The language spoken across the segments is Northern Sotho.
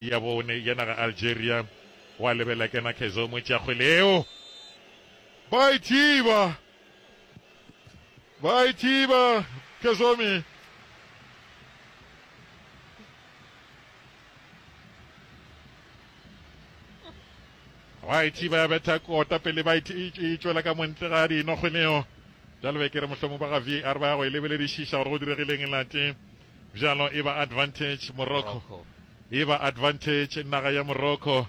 ya bone ya naga Algeria wa lebela kena Kezo Moetsiakgwe leo ba e thiba ba e thiba Kezomi ba e thiba ya betha kota pele ba e tšwela ka montle ga dinokgweleo jalo be ke re mohlomong ba ga var ba ya go e lebeledišiša gore go diregileng e late Bjalo e ba advantage Morocco. E ba advantage naga ya Morocco.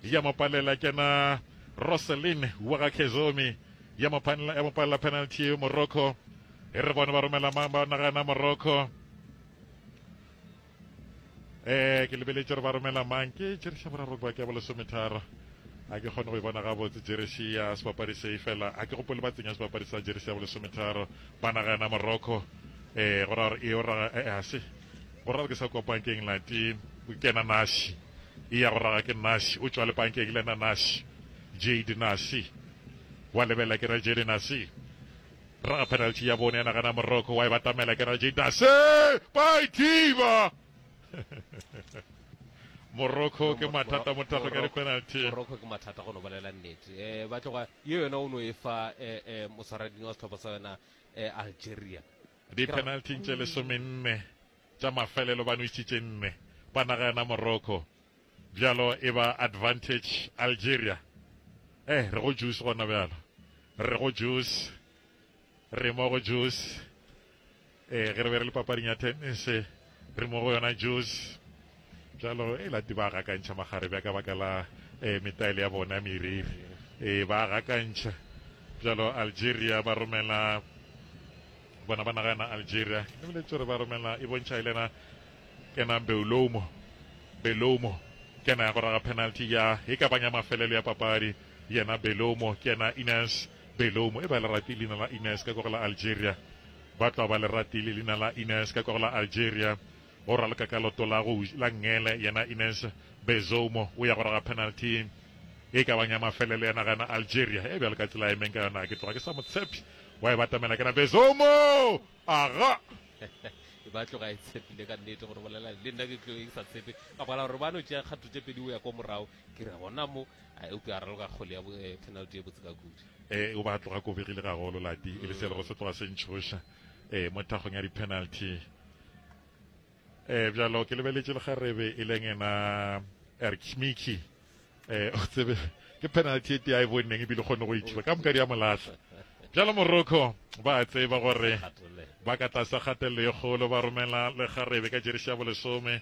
Ya mo palela kena Roselyn wa ga Kezomi. Ya mo panela ya mo palela penalty Morocco. E re bone ba romela mang ba naga na Morocco. Eh ke lebeletše re ba romela mang ke tšeriša boraro ba ke ya bolesometharo a ke kgone go e bona gabotse jeresi ya sebapadi se fela a ke gopole ba tsenya sebapadi sa jeresi ya bolesometharo ba nagana morocco Ee, go ra gore e o raga, ee, ga se. Go ra gore ke sa kwa pankeng nate, ke ena nasi. E ya go raga ke nasi, o tšwa le pankeng le ena nasi. Jade nasi. Wa lebelela ke ra Jade nasi. Raga penalty ya bone ya naga na Morocco, wa e batamela ke ra Jade nasi. By Diva! Morocco ke mathata mo tago ya dipenalty. Morocco ke mathata go no bolela nnete. Eh, ba tloga, yo yona o no e fa, eh, eh, moswaradini wa setlhopha sa yona, Algeria. Dipenalting tše lesomenne tša mafelelo ba nwešitše nne ba naga yona Morocco, bjalo e ba advantage Algeria. Eh, re go juice gona bjalo, re go juice, re mo go juice. Eh, ge re be re le papading ya tennis, Re mo go yona Jews jalo e lati ba gakantšha magare bja ka baka la eh, metaele ya bona meriri eh, ba gakantšha jalo Algeria ba romela bona ba nagana Algeria ke lebile tsore ba romela e bontšha e lena kena Beulomo Belomo kena ya go raga penalty ya e ka banya mafelelo ya papadi yena Belomo kena Ines Belomo e ba le rati leina la Ines ka kogela Algeria Ba tla ba le ratile leina la Ines ka kwa la Algeria go raloka ka loto la go la ngele yena Ines Bezoumo o ya go raga penalty e ka bang ya mafelelo ya naga na Algeria e bjalo ka tsela e meng ka yona ke tloga ke sa motshepi wa e batamela kana Bezoumo aga e ba tloga e tshepile ka nnete gore bolela le nna ke tlo e sa tshepe ka bala gore ba no tšea kgatho tše pedi o ya kwa morago Ke re gona mo a eupša a raloka kgole ya bo, eh, penalty ye botse ka kudu. Eh, o ba tloga kobegile ga golo lati, e le selego se tloga se ntšhoša, eh, mo thakgong ya di-penalty. Eh, bjalo ke lebeletše lekgarebe e leng ena Erkmiki. Eh, o tsebe, ke penalty e tea e bonneng ebile kgone go ithiba ka moka di ya molahla. Bjalo Morocco ba a tseba gore ba ka tlasa kgatelelo ye kgolo, ba romela lekgarebe ka jeresi ya bolesome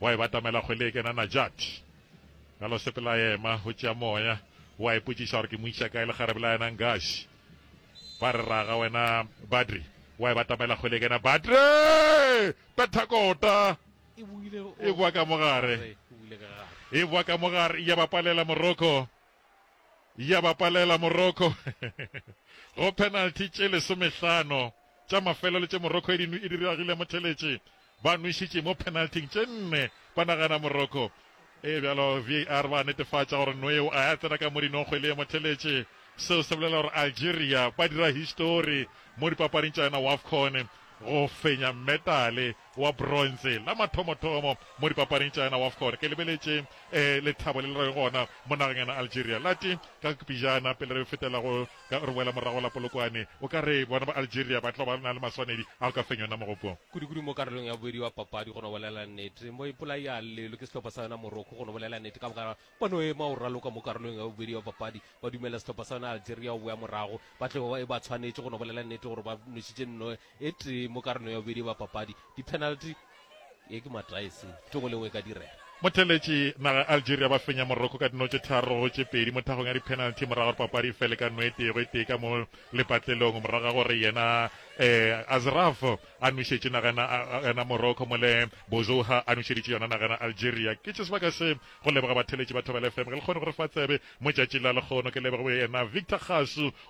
Wa e batamela kgwele e kena Najat ka lo sepela yema o tšea moya wa ipotšiša gore ke mo iša kae lekgarebe la yena Ngashi ba re raga wena Badri wa e batamela kgwele e kena Badri petha kota e boa ka mogare e boa ka mogare ya bapalela Morocco ya ba palela Morocco go penalty tše lesomehlano tša mafelelo tše Morocco e di diragile motheletše ba nwešitše mo penalting tše nne ba nagana Morocco e bjalo VAR ba netefatša gore nweo a ya tsena ka mo dinongkgwe le ye motheletše seo se bolela gore Algeria ba dira histori mo dipapading tša yona WAFCON go fenya metale wa bronze la mathomothomo mo dipapading tša yena Wafcon. Ke lebeletše eh, lethabo le le rego gona mo nageng yena Algeria. Lati ka pejana pele re fetela go ka re boela morago la Polokwane, o ka re bona ba Algeria ba tlo ba na le maswanedi a go ka fenya yona mogopo. Kudu-kudu mo karolong ya bobedi wa papadi, go no bolela nnete, mo ipolai a llelwe ke sehlopha sa yona Morocco. Go no bolela nnete, ka moka ba no ema go raloka mo karolong ya bobedi wa papadi, ba dumela sehlopha sa yona Algeria go boya morago, ba tlo e ba tshwanetše, go no bolela nnete, gore ba nwešitše nno E tee mo karolong ya bobedi ba papadi, dipenalty, ye ke matae se, ke go le ngwe e ka direga. Motheeletši naga ya Algeria ba fenya Morocco ka dino tše tharo go tše pedi mo thagong ya dipenalty morago ga gore papadi e fele ka no e tee go e tee ka mo lepatlelong morago ga gore yena Asraf a nwešetše naga ya Morocco mole Bouzoua a nwešeditše yona naga ya Algeria. Ke tše sebaka se go leboga batheeletši ba Thobela FM ge le kgone go re fa tsebe mo tšatši la lekgono. Ke leboge yena Victor Kgasu.